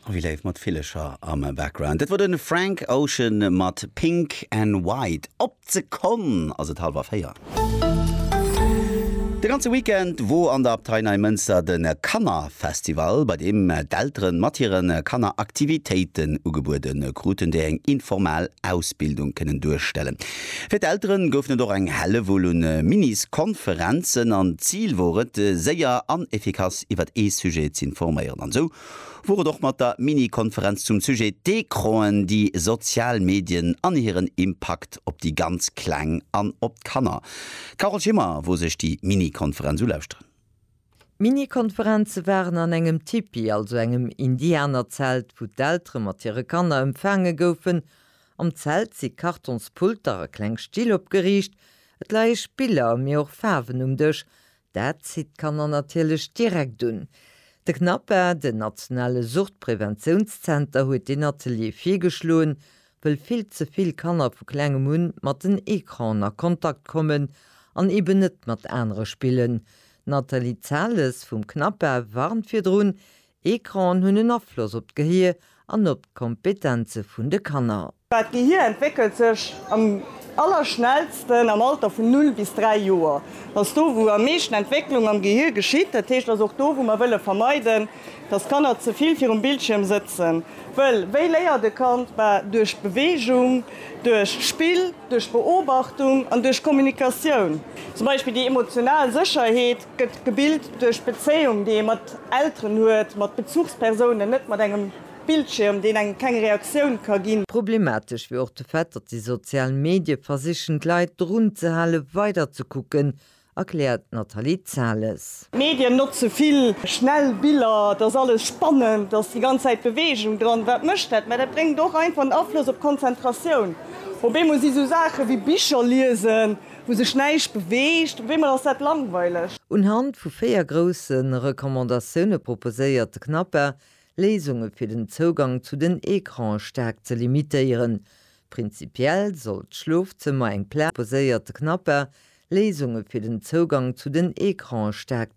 Oh wéi léif, mat Villecher am Background. Dat wor den Frank Ocean mat Pink and White. Op d'Sekonn ass et halwer 4. De ganze Weekend wor an der Abtei Neimënster de Kannerfestival, bei deem d'Elteren mat hire Kanner Aktivitéiten ugebueden kruten, déi eng informell Ausbildung kënnen duerstellen. Fir d'Elteren goufen et och eng Hellewull un Minis-Konferenzen an d'Zil wor et séier an efficace iwwert ee Sujet z'informéieren an sou wor et och mat der Mini-Konferenz zum Sujet D'Ecranen, déi sozial Medien an hiren Impakt op déi ganz Kleng an op d'Kanner. D'Carole Schimmer wor sech déi Mini-Konferenz ulauschteren. D'Mini-Konferenze waren an engem Tipi, also engem Indianerzelt, wou d'Eltere mat hire Kanner empfaange goufen. Am Zelt si Kartonspulter a kleng Still opgeriicht. Et leie Spiller, mee och Faarwen um Dësch. Dat zitt d'Kanner natierlech direkt un. De CNAPA, den nationale Suchtpreventiounszenter, huet deen Atelier virgeschloen. wëll vill ze vill Kanner vu klengem un mat den Ecranen a Kontakt kommen an eben net mat anere spillen. D'Nathalie Zahles vum CNAPA warnt virdrun, Ecranen hunn en Afloss op d'Gehier an op d'Kompetenze vun de Kanner. D'Gehier entwéckelt sech am allerschnellsten am Alter vun 0 bis 3 Joer. Dat ass do, wou am meeschten Entwécklung am Gehier geschitt. Dat heescht, dat ass och do, wou mer wëlle vermeiden, Dass d'Kanner ze vill virum Bildschierm sëtzen, wëll wéi léiert e Kand? Bah, duerch d'Beweegung, duerch d'Spill, duerch d'Beobachtung an duerch d'Kommunikatioun. Zum Beispill déi emotional Sécherheet gëtt gebilt duerch d'Bezéiung, déi ee mat Elteren huet, mat Bezuchspersounen, net mat engem Bildschierm, deen engem keng Reaktioun ka ginn. Problematesch wier och de Fait, datt déi sozial Medie versichen d'Leit drun ze hale weider ze kucken, erkläert d'Nathalie Zales. D'Medien notze vill schnell Biller, et ass alles spannend, et ass déi ganz Zäit Beweegung dran. Wat mécht dat? Mä dat bréngt och einfach en Afloss op d'Konzentratioun. Op eemol si sou Saache wéi Bicher liesen, wou sech näischt beweegt, op eemol ass dat langweileg. Unhand vu véier grousse Recommandatioune proposéiert de CNAPA Léisunge fir den Zougang zu den Ecrane staark ze limitéieren, Prinzipiell soll d'Schlofzëmmer eng Pla. Proposéiert de Knapper, Léisunge fir den Zougang zu den Ecrane staark.